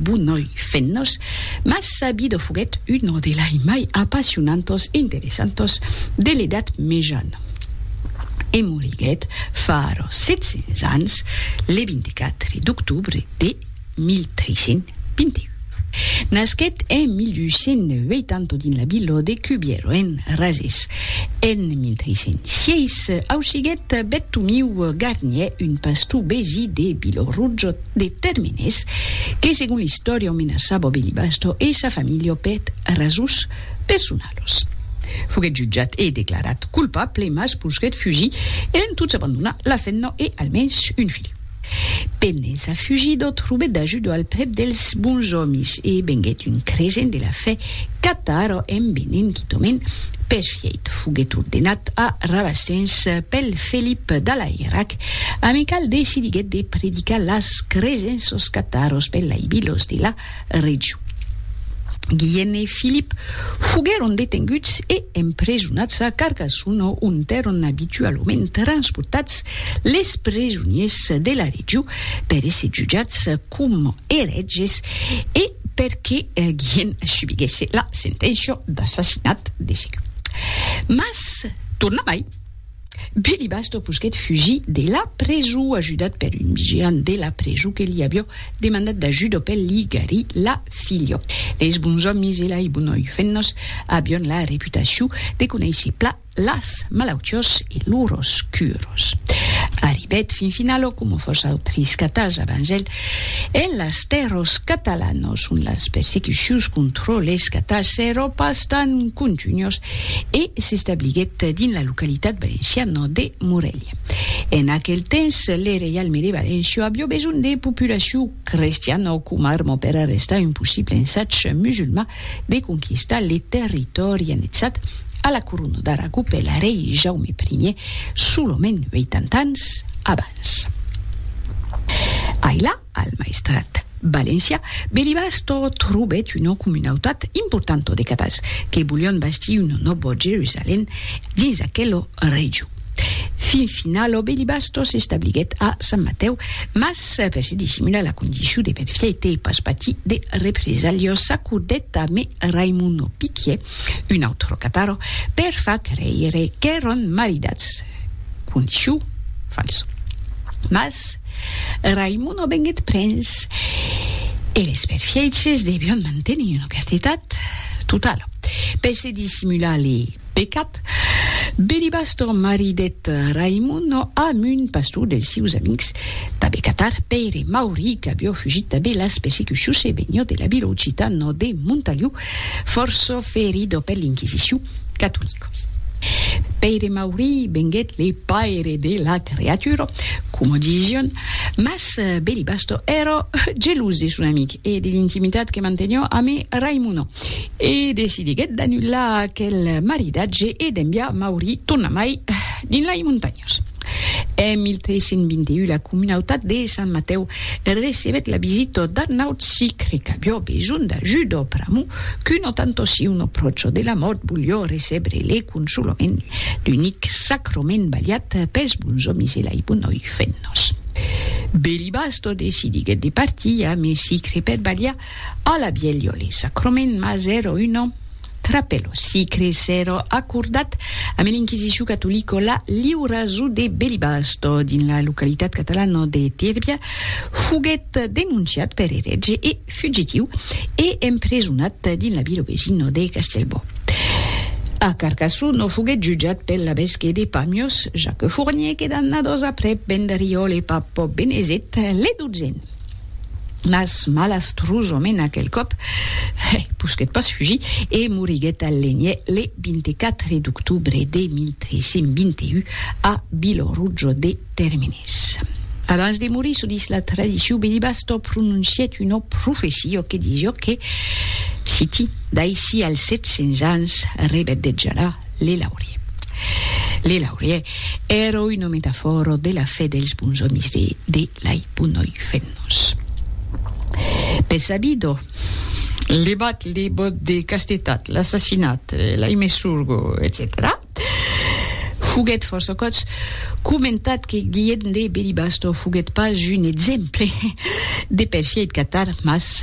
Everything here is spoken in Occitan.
Bunhòi fennos, mas Sabido foguèt uno de lai mai apassionantos e interessantos de l'Edat Mejana, e moriguèt fara 700 ans le 24 d'octobre de 1321. Nasquèt en 1880 dins la vila de Cubiero, en Razès. En 1306 ausiguèt Bettomiu Garnier, un pastor besí de Vilorrujo, de tèrmines que segon l'istòria o menaçava Belibasto e sa familha o peth rasons personalos. Foguèt jutjat e declarat colpable mas posguèt fugir e en tots abandonar la femna e almens un filh. Pendent sa fugida trobèt d'ajuda al prèp dels bons òmis e venguèt un creisent de la fe catara en venent quitament perfièit. Foguèt ordenat a Rabasens pel Felip d'Alairac Amical decidiguèt de predicar las cresents sos cataros pellaibilos de la region. Guillen e Filip foguèron detenguts e empresonats a Carcassonne o ontèron abitualament transportats les presoniers de la region per èsser jutjats coma erètges e perque Guillen subiguèsse la senténcia d'assassinat de segon. Mas tornamai. Belibasto posquèt fugir de la preso ajudat per un vigilant de la preso que li avió demandat d'ajuda per li garir la filha. Leis bons òmis e lai bonoi fennos avión la reputacion de conéisser pla las malautiós e loros curos. Arribèt fin finalo, coma fòs autris catas abans el, en las tèrros catalanos, ont las persecucions contro les catas s'èro pas tan contunhos e s'establiguèt dins la localitat valenciana de Morelha. En aquel temps, le reialme de Valencia avió besonh de populacion crestiana coma arma per arrestar un possible ensatge musulman de conquistar le territòri annexat a la corona d'Aragó per l'arrei Jaume Ier solament 80 ans abans. Ailà, Al Maestrat valencià Belibasto trobèt una comunautat importanta de catals que volián bastir una nòva Jerusalèm dins aquela region. Fin finala Belibasto s'establiguèt a Sant Matèu, mas per se dissimular la condicion de perfieite e pas patir de represalhas s'acordèt a me Raimono Piquier, un autre catar, per far creire qu'èran maridats. Condiçiu, fals. Mas Raimon non venguèt prens e les perfièches devion mantenir una castetat totala. Per se dissimular le pecat, Belibastor maridèt Raimon amb un pastor dels sieus amics d'abe Catar, Pèire Mauri, qu'avió fugit d'abe las persecucions e venió de la vila occitana de Montaliu Fòrça ferido per l'Inquisicion catolica. Pèire Maurí venguèt le paire de la creatura, coma disián, mas Belibasto èra gelós de son amic e de l'intimitat que manteniá amé Raimona, e decidiguèt d'anullar aquel maridatge e d'enviar Maurí tornamai dins lai montanhas. En 1321 la comunautat de Sant Matèu recebèt la visita d'un naut sicre qu'aviá besonh d'ajuda pr'amor qu'un tanto si un apròcho de la mòrt voliá recebre le consolament, l'unic sacrament balhat pels bonsomis e lai bonoi fennas. Belibasto decidiguèt de partir a Mesicre per balhar a la bielha le sacrament, mas èra una. Trape lo sicre s'èra acordat amb l'inquisicion catolica la liura zo de Belibasto, dins la localitat catalana de Tírbia, foguèt denonciat per eretge e fugitiu e empresonat dins la vila vesina de Castellbò. A Carcassó no foguèt jutjat pel labesque de Pamiós, Jacques Fournier, que d'annadas aprèp vendriòle pap Benezet, le dotzèn. Mas malastrosament aquel còp, hè, posquèt pas fugir e moriguèt al Lenier le 24 d'octobre de 1321 a Vilorujo de Terminés. Abans de morir, çò dis la tradicion, Belibasto prononcièt una profecia que disiá que, citi, D'aicí als 700 ans rebedejarà le laurier. Le laurier èra una metafòra de la fe dels bons òmis de Lai punoi fennos. Be sabido, levat le bot de castetat, l'assassinat, lai me surgo, etcetèra Foguèt fòrça còps comentat que Guillem de Belibasto foguèt pas un exemple de perfièit catar, mas